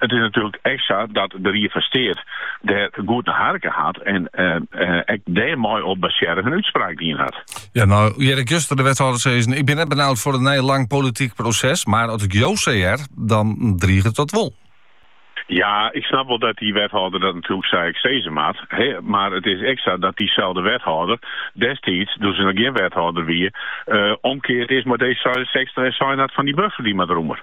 It is natuerlik ek sa dat de Ried fan Steat dêr goed nei harke hat en ek dêrmei op basearre in útspraak dien hat. Ja, no hear ik juster de wethâlder sizzen, ik bin net benaud foar in nij lang polityk proses, mar as ik jo sa hear, dan driget dat wol. Ja, ik snap wol dat dy wethâlder dat natuerlik sa ek sizze moat, mar it is ek sa dat dyselde wethâlder destiids, doe't se noch gjin wethâlder wie, omkeard is mei D66 en sein hat fan dy buffer dy moat rûmer.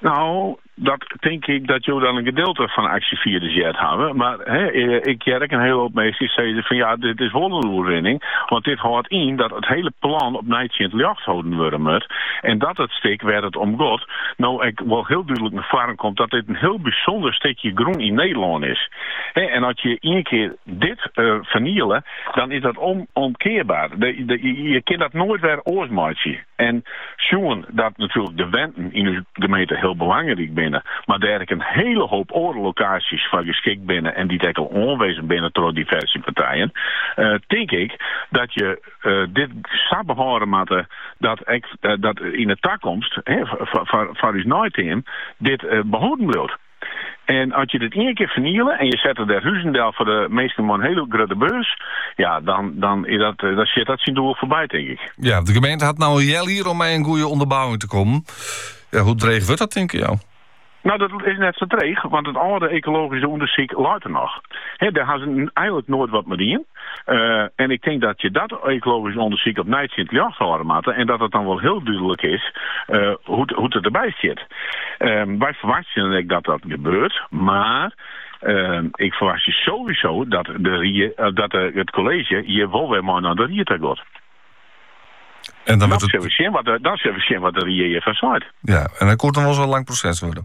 No, dat tink ik dat jo dan in gedeelte fan 'e aksjefierders heard hawwe. Mar ik hear ek in hiele hoop minsken sizze fan ja, dit is wol in oerwinning. Want dit hâldt yn dat it hiele plan opnij tsjin it ljocht holden wurde moat. En dat it stik wêr't it om got, no ek wol hiel dúdlik nei foaren komt dat dit in hiel bysûnder stikje grûn yn Nederlân is. En as je ien kear dit ferniele, dan is dat ûnomkearbaar. Je kinne dat noait wer oars meitsje. En sjoen dat natuerlik de wenten yn ús gemeente hiel belangryk binne, mar dêr ek in hiele hoop oare lokaasjes foar geskikt binne en dy't ek al oanwizzen binne troch diverse partijen, tink ik dat je dit sa behâlde moatte dat ek dat yn 'e takomst foar ús neiteam dit behâlden bliuwt. En as je dit ien kear ferniele en je sette der huzen del foar de minsken mei in hiele grutte beurs, ja, dan, dan, is dat, eh, dan sjit dat syn doel foarby, tink ik. Ja, de gemeente hat no in healjier om mei in goede ûnderbouwing te kommen. Ja, hoe dreech wurdt dat, tinke jo? No, dat is net sa dreech, want it âlde ekologyske ûndersyk leit der noch. Hè, dêr ha se eigentlik noait wat mei dien. en ik tink dat je dat ekologysk ûndersyk opnij tsjin it ljocht hâlde moatte en dat it dan wol hiel dúdlik is hoe't it derby stiet. Wy ferwachtsjen dan ek dat dat gebeurt, mar ik ferwachtsje sowieso dat it kolleezje hjir wol wer mei nei de ried ta giet. Dan sille we sjen wat de ried hjirfan seit. Ja, en dat koe dan wol ris in lang proses wurde.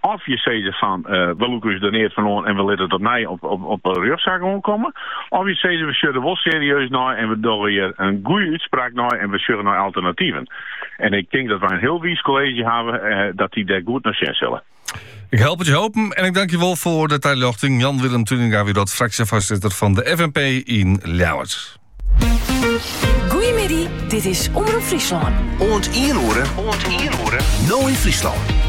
Of je sizze fan, we lûke ús der neat fan oan en we litte it opnij op in rjochtsaak oankomme. Of je sizze, we sjogge der wol serieus nei en we dogge hjir in goede útspraak nei en we sjogge nei alternativen. En ik tink dat wy in hiel wiis kolleezje hawwe dat dy dêr goed nei sjen sille. Ik help it jo hoopjen en ik tank jo wol foar de taljochting. Jan Willem Tuininga wie dat, fraksjefoarsitter fan de FNP yn Ljouwert. Goeiemiddei, dit is Omrop Fryslân. Oant 1 oere, oant 1 oere, No yn Fryslân.